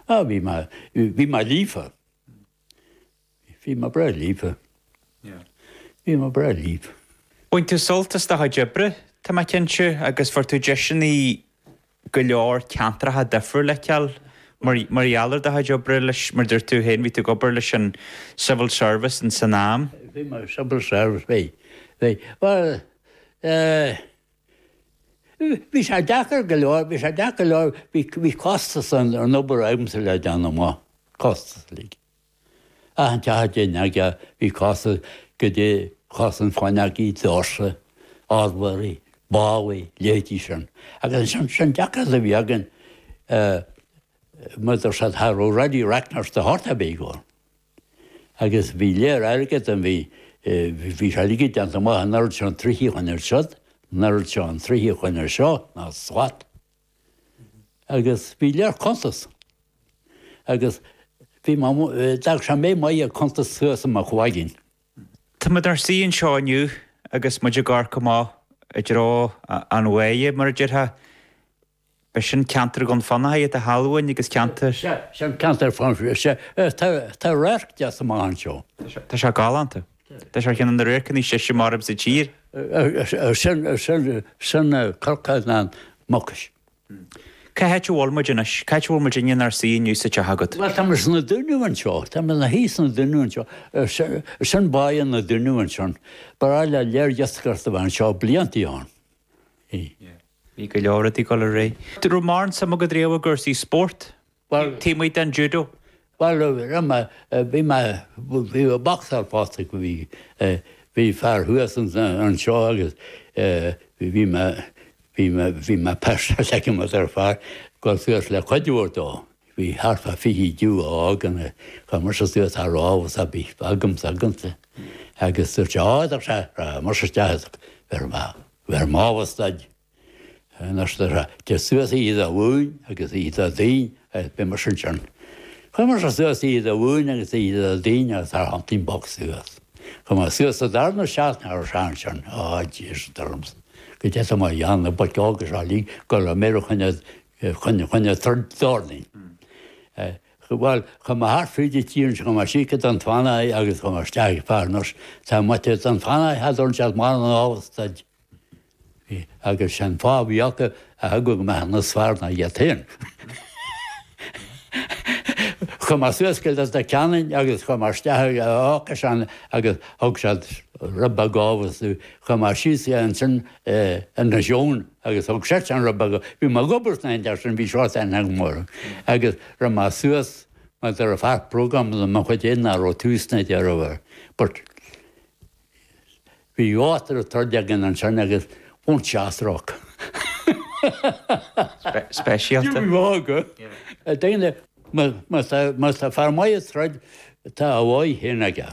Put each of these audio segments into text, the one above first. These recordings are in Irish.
Ah, bhí mé, bhí mé líofa. Bhí mé breá líofa. Bhí mé breá líofa. Bhain tú sult as do chuid oibre, tá mé cinnte, agus an bhfuair tú deiseanna go leor ceantracha difriúil a fheiceáil mar gheall ar do chuid oibre le, mar a dúirt tú féin, bhí tú ag obair leis an Civil Service in san am. Bhí mé ag Civil Service, bhí, bhí. Bhuel, eh, Bhí sé deacair go leor, bhí sé deacair go leor, bhí costas an obair agamsa le déanamh amach, costas uilig. Achan teach a dtéinn ag, bhí costas, go dtí costas an fáinne agaí, doirse, adhmaid, ballaí, leithéidí sin. Agus an deacracht a bhí againn, mar dúirt siad, cha raibh ready reckoners de shórt ar bith againn. Agus bhí léar airgid de, bhí, bhí sé uilig déanta amach an oiread seo troithe a choinneáil ar siúd, an oiread seo troithe a choinneáil ar seo, ná slat. Agus bhí léar cuntas. Agus bhí mo, d'fhág sé mé maith ag cuntas suas i mo chloigeann. Tá muid inár suí anseo inniu agus muid ag amharc amach i dtreo an bhaile, mar a déarfá, B'shin ceantar Dhún Fionnachaidh, ar thaobh amháin agus ceantar. Sea, sin ceantar Fionnachaidh. Sea, tá radharc deas amach anseo. Tá sé galánta. Tá sé ar cheann de na radharcanna is deise measaim sa tír. Sin Cnocán na Mucaise. Cá háit a bhfuil muid anois? Cá háit a bhfuil muid inniu inár suí inniu sa teach agat? Bhuel, tá muid sna Dúnaibh anseo. Tá muid ina shuí sna Dúnaibh anseo. Sin Baile na Dúnaibh ansin. Ba bhreá le Lord Leitrim a bheith anseo blianta ó shin. Sea. Bhí go leor ag dul ar aghaidh. An raibh mórán suime agat riamh i gcúrsaí spóirt, taobh amuigh den judo? Bhuel, raibh mé, bhí mé, bhí mé bocsáil fosta, bhí, bhí fear thuas anseo agus bhí mé, bhí mé, bhí mé pestered ag mo dheirfiúr, dhul suas le cuidiú dó, bhí thart fá fiche judo a fhágann a, chuir mise suas na lámhainní a bhí agamsa, agamsa. Agus dúirt sé, á, dúirt sé, rachaidh mise isteach is bheireadh mé. Bheir mé na Stáit Aontaithe de suas Iwo Jima agus Aden agus beidh muid sin sin. Chuir muid suas í do mhúin agus í do dhein agus Antrim Box suas. Chuir muid suas sa darna seachtain sean sin, á Jesus dúirt mise, go gcaithfidh mé na boic óga seo uilig go léir a choinneáil, a choinneáil troid d'órdain. Bhuel, chuaigh muid thart fríd an tír anseo, chuaigh muid síos go Dún Fionnachaidh agus chuaigh muid isteach ag Farners, taobh amuigh de Dhún Fionnachaidh, thart orainn siad muid a ghabháil isteach. Bhí, agus sé'n fáth a bhí acu eagla go mbeadh muid níos fearr ná iad féin. Chuaigh muid suas go Leitir Ceanainn agus chuaigh muid isteach ag Eochais ann agus thug siad ruaig, chuaigh muid síos ansin ina sheomra, Agus thug seisean rud beag, bhí mé ag obair sna hAindéis sin, bhí seo san agam orthu, agus raibh mé suas, mar do raibh faic bróga agam de mo chuid fhéin nach raibh tús ná deireadh acu, but bhí áit raibh troid againn ansin agus won't see a stroke. Speisialta. Ní bheadh, a David, más tá fear maith ag troid, tá a bháidh féin aige.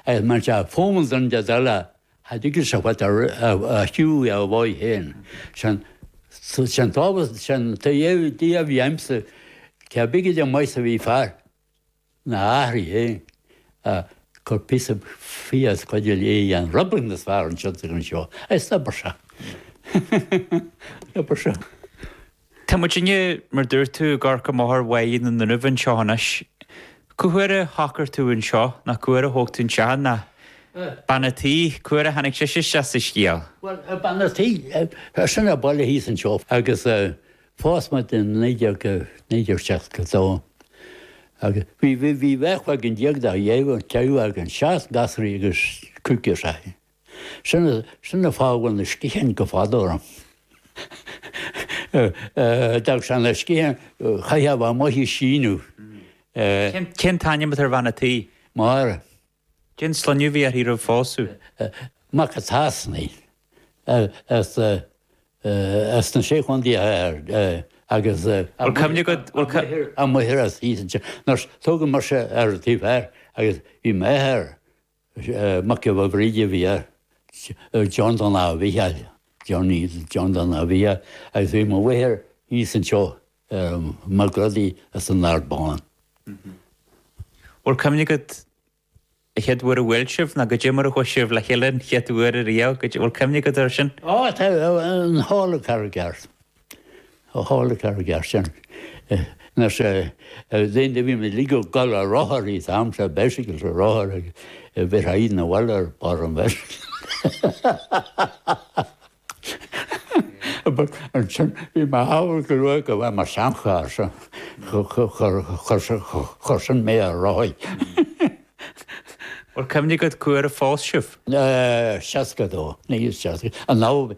Agus má tá fómhar don de dhola thaighde agus a bhfuil a thriú a bhfáidh féin, sin sin tábhacht, sin dia a bhí aimsa, cé bith, ar ndóigh, maise a bhí fear na h-aithrí féin a cur píosa fiadh chuige a léigh an Roibling is fearr ansin ag an seó. Is obair seo. Obair seo. Tá muid inniu, mar dúirt tú, i gCorca Máthair Bhaile na nDruimh anseo anois. Cén uair a shocraigh tú anseo, ná cén uair a thóg tú anseo, ná bean a' tí, cén uair a tháinig sise isteach sa scéal. Bhuel, bean a' tí, as an baile thíos anseo agus phós muid in 1962 agus bhí beirt cloigeann déag dá dheimhin, ceithre mhac, seacht ngasraí agus cúig girseachaí. Sin a, sin a fágadh na sciatháin go fada orm. D'fhág sé na sciatháin chaith mé a amuigh ag síneadh. Cén t-ainm atá ar bhean a' tí? Máire. Cén sloinneadh a bhí uirthi sular phós? Mac a' tSasanaigh. As, as na Sé Chontae Thoir agus a. Bhfuil cuimhne agat, bhfuil. Amuigh thoir, as thíos ansin. Muise, tógadh mise ar an taobh thoir agus bhí m'athair Mac Giolla Bhríde a bhí air, John Donagh a bhí air, Johnny, John Donagh a bhí air, agus bhí mo mháthair thíos anseo, Mac Rodaí as an Ard Bán. Bhfuil cuimhne agat a chéad uair a bhuail sibh ná goidé mar a chuaigh sibh le chéile an chéad uair ariamh, goidé, bhfuil cuimhne agat air sin? Á, tá, i halla Carraig Airt. Ó halla Carraig Airt sin, na déanaí bhí muid uilig ag gabháil ar rothair an t-, am seo bicycle ar rothar ag bíodh an bheirt ar barr an bhicycle. Ansin bhí mé sábháil go luath go bhfuair mé seancharr so chuir sin mé ar rothaí. Bhuel, cuimhne agat cén uair a phós sibh. Seasca a dó, naoi is seasca, an lá a bhí.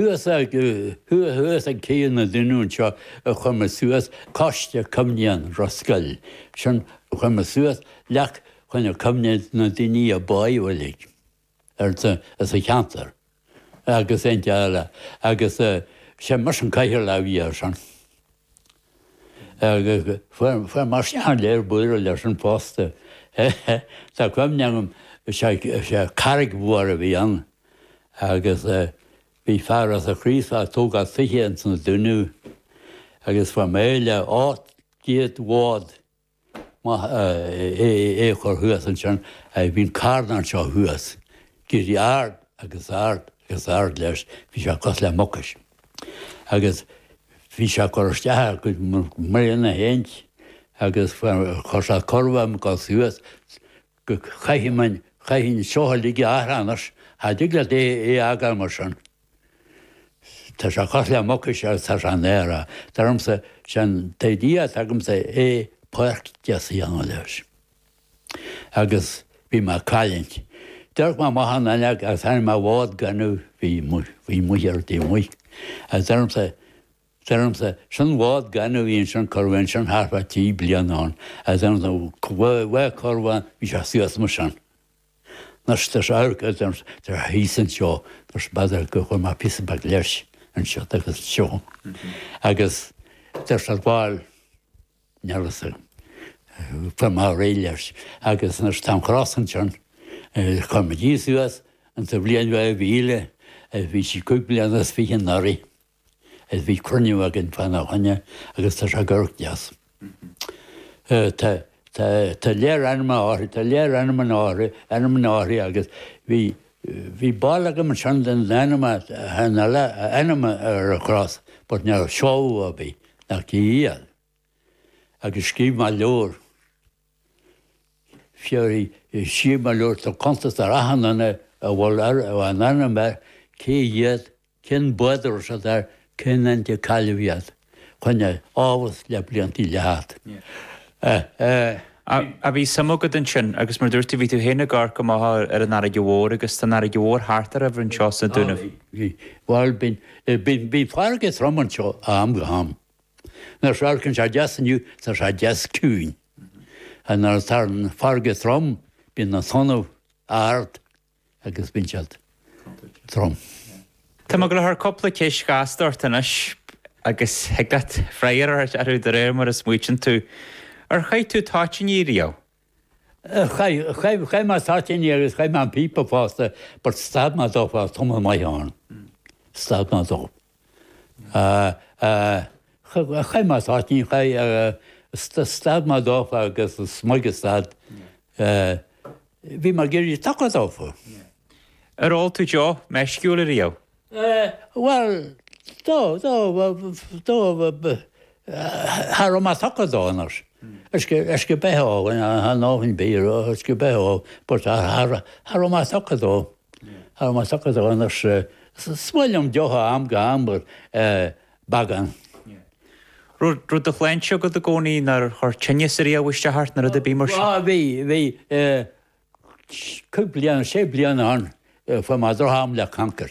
Thuas thuas ag taobh na dinniún seo a chuir muid suas Coiste Cuimhneacháin Ros Goill. Sin, chuir muid suas leac chuimhne, cuimhne do na daoine a bádh uilig ar sa cheantar agus, agus is é mise an cathaoirleach a bhí ar sin. Fuair mé léar bother leis sin fosta. Tá cuimhne agam, is é carraig mhór a bhí ann agus bhí fear as an Chraoslach ag tógáil tithe ins na Dúnaibh agus fuair mé b'fhéidir ocht gcéad lód. Mé é a chur thuas ansin, bhí an carn anseo thuas ag éirí ard agus ard agus ard leis, bhí sé cosúil le Mucais. Agus bhí sé ag cur isteach ar mhná na háite agus chuir sé corb ar mo gcos thuas go caithfidh seo uilig athrú anois. Cha dtig leat é a fhágáil mar sin. Tá sé cosúil le Mucais tá sé in aer. Dar liomsa, sé an t-idea atá agamsa é páirc dheas a dhéanamh leis. Agus bhí mé ag cailliúint. D'amharc mé amach an fhuinneog agus chonaic mé lód gainimh a bhí amuigh ar an taobh amuigh. Agus dar liomsa, dar liomsa, sin lód gainimh a bhí ansin a cuireadh ansin thart fá trí bliana ann. Agus dar liomsa, bhí sé suas mar sin. Nurse There's a hurg a There he's an seo There's bother go chuir mé píosa beag leis an seo agus an seo agus There's ar ball neargus a chuir mé réidh leis agus There's táim cross an sin chuir muid fhios uait an t-bhliain bheith a bhí le bhí sí cúig bliana is fiche anuraidh. Is bhí cruinniú againn faoina choinne agus tá sé ag amharc deas. Tá léar ainmneacha uirthi, tá léar ainm, ainmneacha uirthi agus bhí barúil agam ansin den ainm a ainm ar an chros but ní raibh a fhios ag aon duine cé hiad agus scríobh mé leabhar. Feicfidh sibh i mo leabhar tá cuntas ar achan duine a bhfuil a n-ainm air, cé hiad, cén bád a raibh siad air, cén t-am a cailleadh iad. Cuimhne a bheas le bliantaí le theacht. Á, bhí suim agat ansin, agus mar a dúirt tú, bhí tú féin ag obair amuigh ar an fharraige mhór, agus tá an fharraige mhór thart oraibh anseo sna Dúnaibh. Bhí, bhí. Bhuel, bíonn, bíonn, bíonn farraige trom anseo ó am go ham. Nuair a amharcann sé deas inniu, tá sé deas ciúin. Ach nuair atá an fharraige trom, bíonn na tonnaí ard agus bíonn siad trom. Tá mé ag gabháil a chur cúpla ceist ghasta ort anois agus thig leat freagra a thabhairt orthu de réir mar a smaoitionn tú. Ar chaith tú toitíní riamh? Chaith mé toitíní agus chaith mé an píopa fosta but stad mé dófa tamall maith ann. Stad mé dó. Chaith mé toitíní, chaith, stad mé dófa agus is maith gur stad, bhí mé ag éirí tugtha dófa. Ar ól tú deoch meisciúil ariamh? Eh, bhuel, do, do, do, cha raibh mé tugtha dó, anois, uisce beatha a ól, you know, a ndóthain bia, uisce beatha a ól, but cha raibh mé tugtha dó, cha raibh mé tugtha dó, anois, is maith liom deoch ó am go ham, but eh, beagán. Yeah. Raibh do shláinte agat i gcónaí, nár chuir tinneas ariamh isteach ort nuair a bhí tú mar sin? Bhí, bhí, eh, cúig bliana, sé bliana ann fuair mé droch-am le cancar.